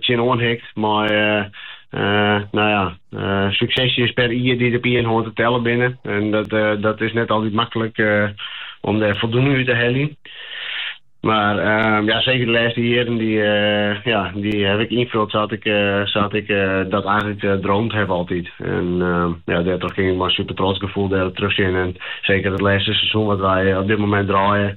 tsjinoan hikt mei no ja, suksesjes per jier dy't op ien hân te tellen binne. En dat is net altyd maklik om dêr foldoening út te heljen. Mar ja, seker de lêste jierren dy ja, dy haw ik ynfuld sa't ik dat eigentlik droomd haw altyd. En ja, dêrtroch kin ik mei in supertrots gefoel dêrop terugsjen. En seker it lêste seizoen wat wy op dit momint draaie,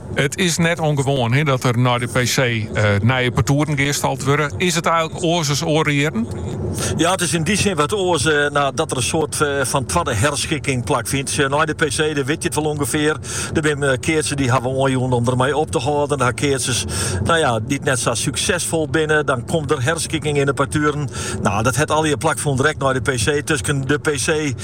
It is net ûngewoan dat der nei de PC nije partoeren gearstald wurde. Is it eigenlik oars as oare jierren? Ja, it is yn dy sin wat oars dat der in soart fan twadde herskikking plakfynt. Nei de PC, dan wit je it wol ûngefear. Der binne keatsers dy't hawwe oanjûn om dermei op te hâlden. Dan ha je keatsers dy't net sa súksesfol binne. Dan komt der herskikking yn de partueren. No, dat hat allegear plakfûn, direkt nei de PC. Tusken de PC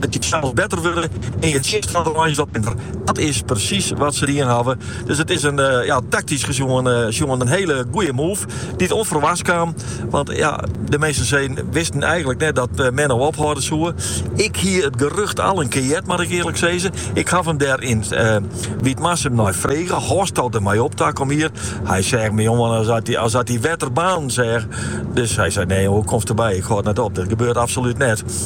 It kin sels better wurde en je tsjinstanners wat minder. Dat is presys wat se dien hawwe. Dus it is in taktysk sjoen in hiele goede move dy't ûnferwachts kaam. Want ja, de measte minsken wisten eigenlik net dat Menno ophâlde soe. Ik hie it gerucht al in kear heard, moat ik earlik sizze. Ik haw him dêr yn Wytmarsum nei frege, hâldsto dermei op takom jier? Hy seach my oan as at hy wetter baarnen seach. Dus hy sei, nee, hoe komst derby, ik hâld net op, dat gebeurt absolút net.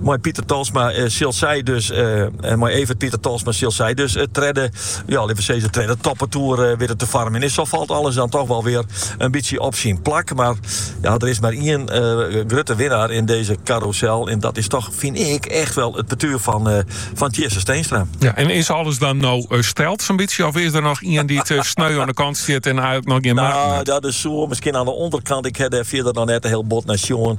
Mei Pieter Tolsma sil sy dus mei Evert Pieter Tolsma sil sy dus it tredde, ja litte we sizze tredde toppartoer witte te foarmjen. Sa falt alles dan toch wel weer in bytsje op syn plak. Mar ja, der is mar ien grutte winnaar yn dizze karûsel en dat is toch, fyn ik, echt wel it partuer fan fan Tjisse Steenstra. Ja, en is alles dan no steld sa'n bytsje of is der noch ien dy't sneu oan de kant stiet en eigenlik noch gjin maten hat? Nou, dat is soe, miskien oan de ûnderkant. Ik ha dêr fierder noch net sa hiel bot nei sjoen.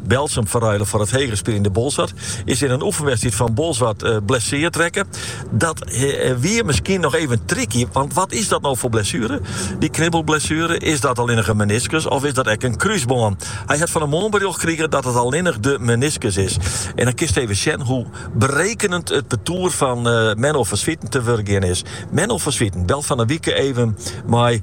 Berltsum ferruile foar it heger spyljende Boalsert, is yn in oefenwedstriid fan Bolsward blesseard rekke. Dat wie miskien noch even tricky, want wat is dat no foar blessuere? Dy knibbelblessuere, is dat allinnich in meniskus of is dat ek in krúsbân? Hy hat fan 'e moarn berjocht krige dat it allinnich de meniskus is. En dan kinst even sjen hoe berekenend it partoer fan Menno van Zwieten te wurk gien is. Menno van Zwieten belt fan 'e wike even mei.